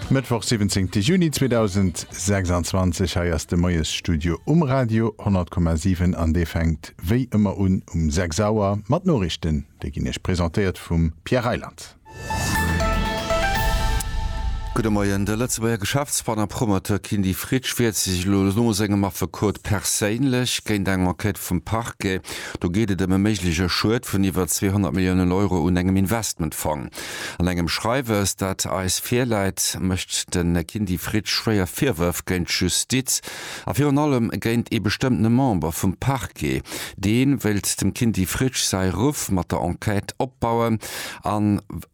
Mëttwoch 17 Juni 2026, hei ass de Moiesstudio um Radio 100,7 an dee fänkt wéi ëmmer un um 6 Auer mat Noriichten. Déi ginn Iech presentéiert vum Pierre Reyland. Gudde Moien, De Lëtzebuerger Geschäftsmann a Promoteur Kindy Fritsch wiert sech elo no sengem Affekot perséinlech géint eng Enquête vum Parquet. Do geet et ëm e méiglege Schued vun iwwer 200 Milliounen Euro un engem Investmentfong. An engem Schreiwes, dat eis virläit, mécht de Kindy Fried schwéier Virwërf géint d'Justiz a virun allem géint ee bestëmmtene Member vum Parquet. Dee wéilt dem Kindy Fried säi Ruff mat der Enquête opbauen,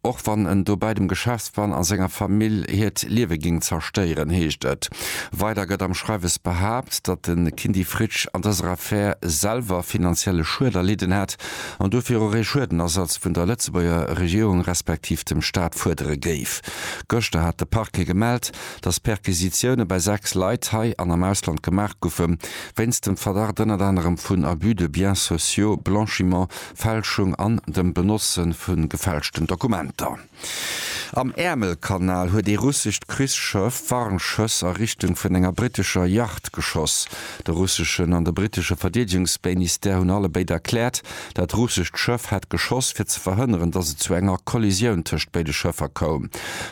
och wann en dobäi dem Geschäftsmann a senger Famill hiert Liewe géing zerstéieren, heescht et weider. Gëtt am Schreiwes behaapt, datt de Kindy Fried an dëser Affär selwer finanzielle Schued erlidden hätt. an dofir och ee Schuedenersatz vun der Lëtzebuerger Regierung respektiv dem Staat fuerdere géif. Gëschter hat de Parquet gemellt, datt Perquisitioune bei 6 Leit hei an am Ausland gemaach goufe wéinst dem Verdacht ënnert anerem vun Abus de biens sociaux, Blanchiment, Fälschung an dem Benotzen vu gefälschten Dokumenter. Am Äermelkanal huet ee russescht Krichsschëff Warnschëss a Richtung vun enger brittescher Yacht geschoss. De russeschen an de brittesche Verdeedegungsbéinistère hunn allebéid erkläert, dat russescht Schëff hätt geschoss, fir ze verhënneren, datt et zu enger Kollisioun tëscht béide Schëffer koum.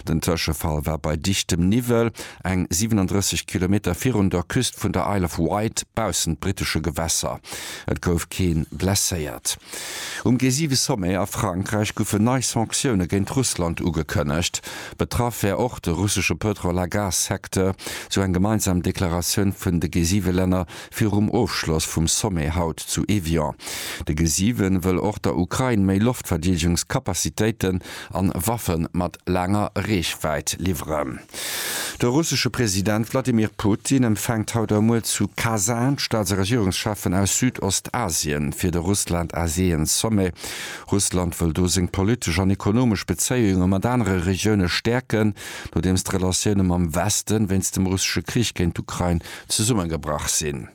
Den Tëschefall war bei dichtem Niwwel, eng 37 Kilometer virun der Küst vun der Isle of Wight, baussent brittesche Gewässer. Et gouf kee blesséiert. Um G7-Sommet a Frankräich goufen nei Sanktioune géint Russland ugekënnegt. Betraff wär och de russesche Pëtrol a Gas-Secteur, sou eng gemeinsam Deklaratioun vun de G7-Länner virum Ofschloss vum Sommet haut zu Evian. De G7 wëll och der Ukrain méi Loftverdeedegungskapazitéiten an Waffe mat laanger Reechwäit liwweren. De russesche President Wladimir Putin empfänkt haut a muer zu Kasan d'Staats a Regierungscheffen aus Südostasien fir de Russland-Asien-Sommet. Russland wëll do seng politesch an ekonomesch Bezéiunge mat anere Regioune stäerken, nodeems d'Relatioune mam Weste wéinst dem russesche Krich géint d'Ukrain zesummegebrach sinn.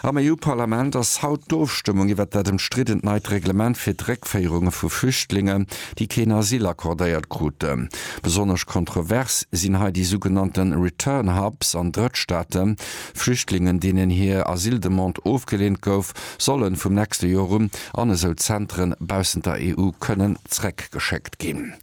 Am EU-Parlament ass haut d'Ofstëmmung iwwert dat ëmstriddent neit Reglement fir d'Réckféierunge vu Flüchtlingen, déi keen Asyl accordéiert kruten. Besonnesch kontrovers sinn hei déi sougenannte Return Hubs an Drëttstaaten. Flüchtlingen, deenen hir Asyldemande ofgeleent gouf, sollen vum nächste Joer un an esou Zentren baussent der EU kënnen zréckgeschéckt ginn.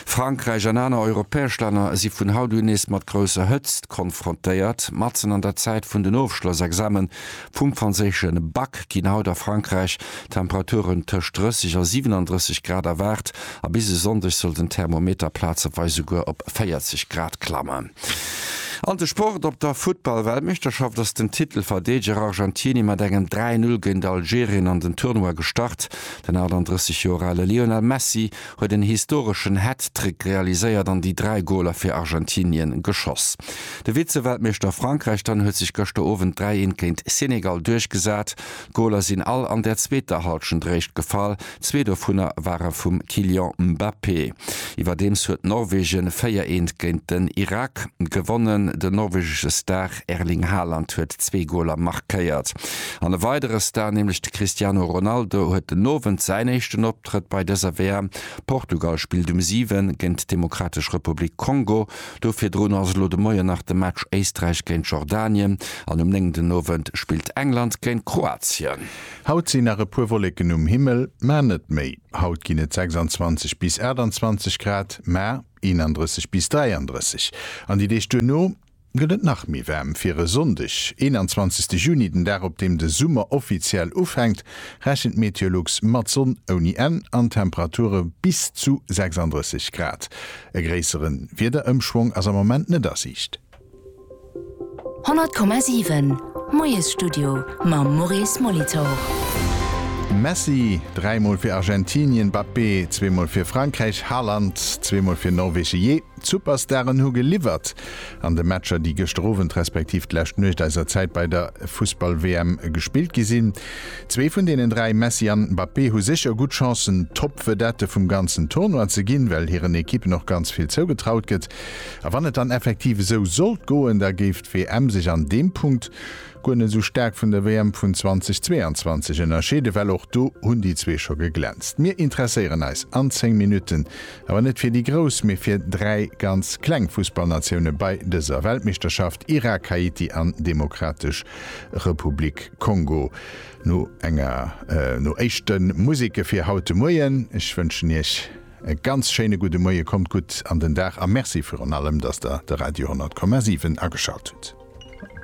Frankräich an aner europäesch Länner si vun haut un nees mat grousser Hëtzt konfrontéiert. Matzen an der Zäit vun den Ofschlossexame vum franséische Bac ginn haut a Frankräich Temperaturen tëscht 30 a 37 Grad erwaart a bis e Sonndeg soll den Thermometer plazeweis souguer op 40 Grad klammen. An de Sport, Op der Futtball-Weltmeeschterschaft ass den Titelverdeedeger Argentinie mat engem 3, 0 géint Algerien an den Tournoi gestart. Den 38 Joer ale Lionel Messi huet en historeschen Hat-Trick realiséiert an déi 3 Goler fir Argentinien geschoss. De Vize-Weltmeeschter Frankräich dann huet sech gëschter Owend 3 Eent géint Senegal duerchgesat. D'Goler sinn all an der zweeter Halschent réischt gefall, zwee dovunner ware vum Kylian Mbappé. Iwwerdeems huet Norwegen 4 Eent géint den Irak gewonnen. Den norwegesche Star Erling Haaland huet zwee Goler markéiert an e weidere Star, nämlech de Cristiano Ronaldo huet den Owend säin éischten op. Optrëtt bei dëser WM. Portugal spillt um 7 géint d'Demokratesch Republik Kongo. Do virdrun ass elo de Moien nach de Match Éisträich géint Jordanien an um 9 den Owend spillt England géint Kroatien. Haut sinn nach e puer Wolleken um Himmel, mä net méi. Haut ginn et 26 bis 28 Grad, mä 31 bis 33 an déi Deeg duerno Gëtt et nach méi waarm fir e Sonndeg, 21 Juni, den Dag op deem de Summer offiziell ufänkt, rechent Meteolux mat Sonn ouni Enn an Temperature bis zu 36 Grad. E gréissere Wiederëmschwong ass am Moment net a Siicht. 100 Komma 7, Moiesstudio mam Maurice Molitor. Messi, dräi mol fir Argentinien, Mbappé, zwee mol fir Frankräich, Haaland, zwee mol fir Norwegen, je. D'Superstaren hu geliwwert. An de Matcher, déi gëschter Owend respektiv d'lescht Nuecht eiser Zäit bei der Fussball-WM gespillt gi sinn, zwee vun deenen dräi, Messi an Mbappé, hu sécher gutt Chancen, Top-Vedette vum ganzen Tournoi ze ginn, well hiren Ekippen och ganz vill zougetraut gëtt. A wann et dann effektiv esou sollt goen, da géif d'WM sech an deem Punkt guer net esou staark vun der WM vun 2022 ënnerscheeden, well och do hunn déi zwee scho geglänzt. Mir interesséieren eis an 10 Minutten Awer net fir déi Grouss, mee fir dräi ganz kleng Fussballnatioune bei dëser Weltmeeschterschaft, Irak, Haiti an Demokratesch Republik Kongo. No enger no éischte Museke fir haut de Moien. Ech wënschen Iech e ganz schéine gudde Moie, kommt gutt an den Dag a Merci virun allem, dass Der de Radio 100,7 ageschalt hutt.